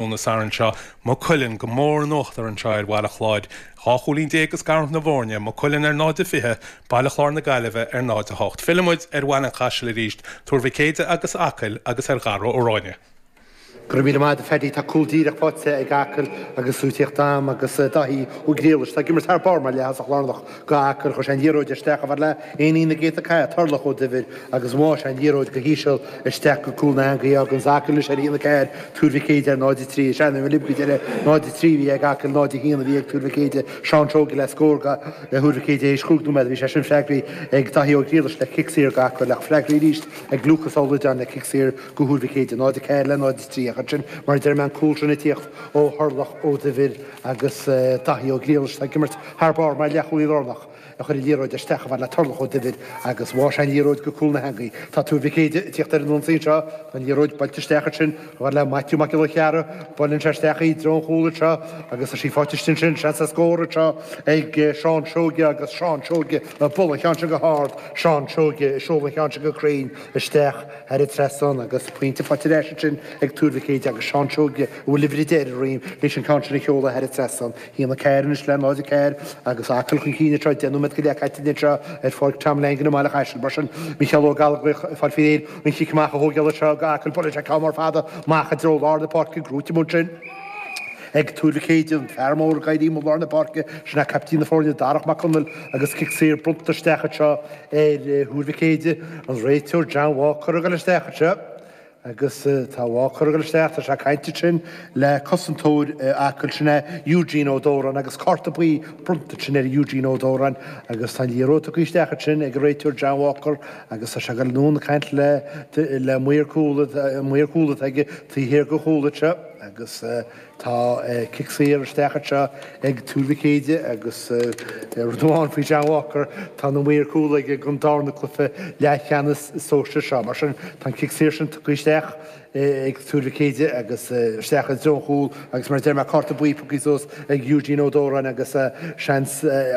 Lúnasa anseo, Maigh Cuilinn, go mór in uachtar anseo ar Bhaile Chláir, 12 chúilín ag scarúint na bhfoirne, Maigh Cuilinn ar 0-20, Baile Chláir na Gaillimhe ar 0-8. Fillimid ar Bhaile an Chaisil arís, Tuar Mhic Éide agus Acaill agus ar Dharragh Ó Ráighne. Go raibh míle maith agat a Phaddy, tá cúl díreach faighte ag Acaill agus tú ag tíocht agam agus Daithí Ó Griallais, atá ag imirt thar barr mar leath-thosaí lárnach, Gach uair a chuir sé an liathróid isteach a fhad le éinín na gcéadta cailleadh Turlach Ó Duibhir agus bháigh sé an liathróid go híseal isteach go cúl na heangaí. Fágann sin Acaill anois ar a haon a ceathair Tuar Mhic Éide ar 0 3. Is é an uimhir libcd eile 0 3 a bhí ag Acaill 0 1 a bhí ag Tuar Mhic Éide. Seán Seoige le scór go Thuar Mhic Éide théis chúig nóiméad. Bhí sé sin freagraithe ag Daithí Ó Griallais le cic saor go Acaill ach freagraithe arís ag Lúcas Ó Loideáin le cic saor go Thuar Mhic Éide. 0 4 le 0 3 agus ansin mar a deir mé an cúl sin ag tíocht ó Thurlach Ó Duibhir agus Daithí Ó Griallais atá ag imirt thar barr mar leath-chúlaí lárnach, a chuir an liathróid isteach a fhad le Turlach Ó Duibhir agus bháigh sé an liathróid go cúl na heangaí. Tá Tuar Mhic Éide ag tíocht ar an ionsaí anseo, tá an liathróid buailte isteach ansin, a fhad le Maitiú Mac Giolla Chearra, buaileann sé isteach í i dtreo an chúl anseo agus tá sí faighte istigh ansin, seans le scór anseo ag Seán Seoige agus Seán Seoige ag bualadh an cheann sin go hard, Seán Seoige ag seoladh an cheann sin go cruinn isteach. Thar an trasnán agus pointe faighte ar ais ansin ag Tuar Mhic Éide agus Seán Seoige, a bhfuil uimhir a deich ar a dhroim leis an ceann sin a sheoladh thar an trasnán, sé a haon a ceathair anois le náid a ceathair agus Acaill chun cinn anseo. Deich nóiméad go leith caite anseo ar Pháirc Tom Langan i mBaile an Chaisil. Mar sin, Micheál Ó Gallchóir, ag fáil faoi réir an chic amach a thógáil anseo go hAcaill. Buaileann sé ceann mór fada amach i dtreo lár na páirce, gnóite ansin. Ag Tuar Mhic Éide, an fear mór ag éirí i lár na páirce, sin é caiptín na foirne, Darach Mac Conaill, agus cic saor bronnta isteach anseo ar Thuar Mhic Éide, an réiteoir, Jan Walker, ag dul isteach anseo agus tá Walker ag dul isteach, tá sé ag caint ansin le cosantóir Acaill, sin é Eugene Ó Dóráin agus cárta buí bronnta ansin ar Eugene Ó Dóráin agus tá an liathróid tugtha isteach ansin ag an réiteoir Jan Walker agus tá sé ag dul anonn ag caint le maor cúil, maor cúl atá aige, taobh thiar den chúl anseo. agus tá cic saor isteach anseo ag Tuar Mhic Éide agus rud amháin faoi John Walker, tá na maoir chúl aige don darna cluife leathcheannas sóisir seo. Mar sin tá an cic saor sin tugtha isteach ag Tuar Mhic Éide agus isteach i dtreo an chúl agus mar a deir mé cárta buí pioctha suas ag Eugene Ó Dóráin agus seans